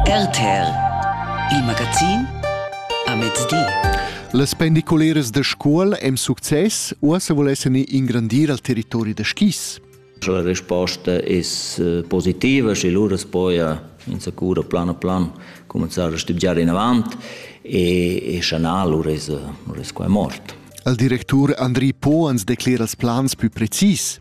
RTL Il magazin a mezdi. Las pendiculeras da scuol èn success, uossa vulessen ingrandir al territori da skis. Sche la risposta è eh, positiva, sche lura poi in sicuro plan a plan cominciare a studiare in avanti e, e sche no, lura è, lura è qua è mort. Il direttore Andri Po ans declera ils plans più precis.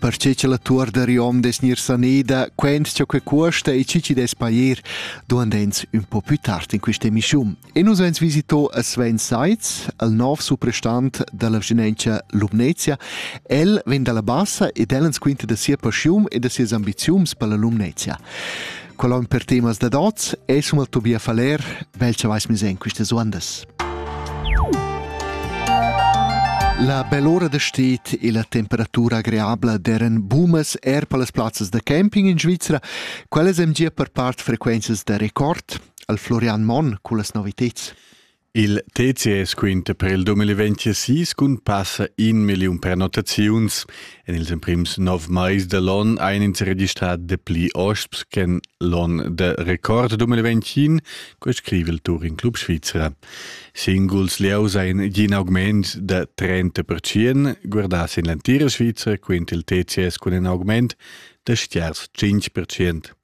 perche cha la tuor da Riom dess gnir saneda, quendscha que cuosta e chi chi dess pair, duand'ns ün po pü tard in quist'emischun. E nus ans visitò a Sven Seitz, al nov suprastant da la Vginentscha Lumnezia. El vegn da la Bassa ed el ans quinta da sia paschiun e da sias ambiziuns per la Lumnezia. Qual on per temas da dots es um al Tobia Faller, vel cha vais mis en quistas uandas. La bell'ora da stet e la temperatura agreabla deren bumas er per las plazzas da camping in Svizra, quellas hem gia per part frequenzas da record, al Florian Monn con las noviteds. Il TCS quinta per il 2026 cun passa in million prenotaziuns En ils emprims nov mais da l'onn ein ins registrà dapli hosps ch'en l'onn de record 2021, co scrive il Turin Club Svizra. Singuls lieus ein gin augment da 30%, guardà sin l'entira Svizra, quint il TCS cun in augment da stiars 5%.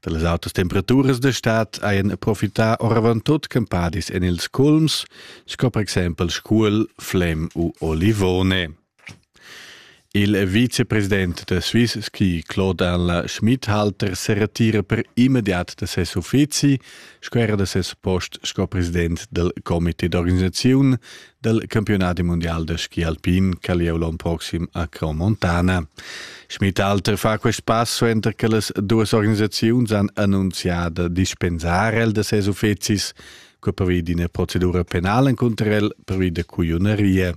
Da las autas temperaturas da stad hajan profità oravant tut campadis en ils culms, sco per exempel Scuol, Flem u Olivone. Il vicepresident da Swiss ski Claude Anla Schmidhalter se retira per immediat da ses uffizi sco era da ses post sco president del comité d'organisaziun del campionati mondial da ski alpin che lieu l'on proxim a Cro Montana. Schmidhalter fa quest pass suenter che las duas organisaziuns han annunziato dispensare el da ses uffizis per d'ina procedura penale contro el per via da cuionerie.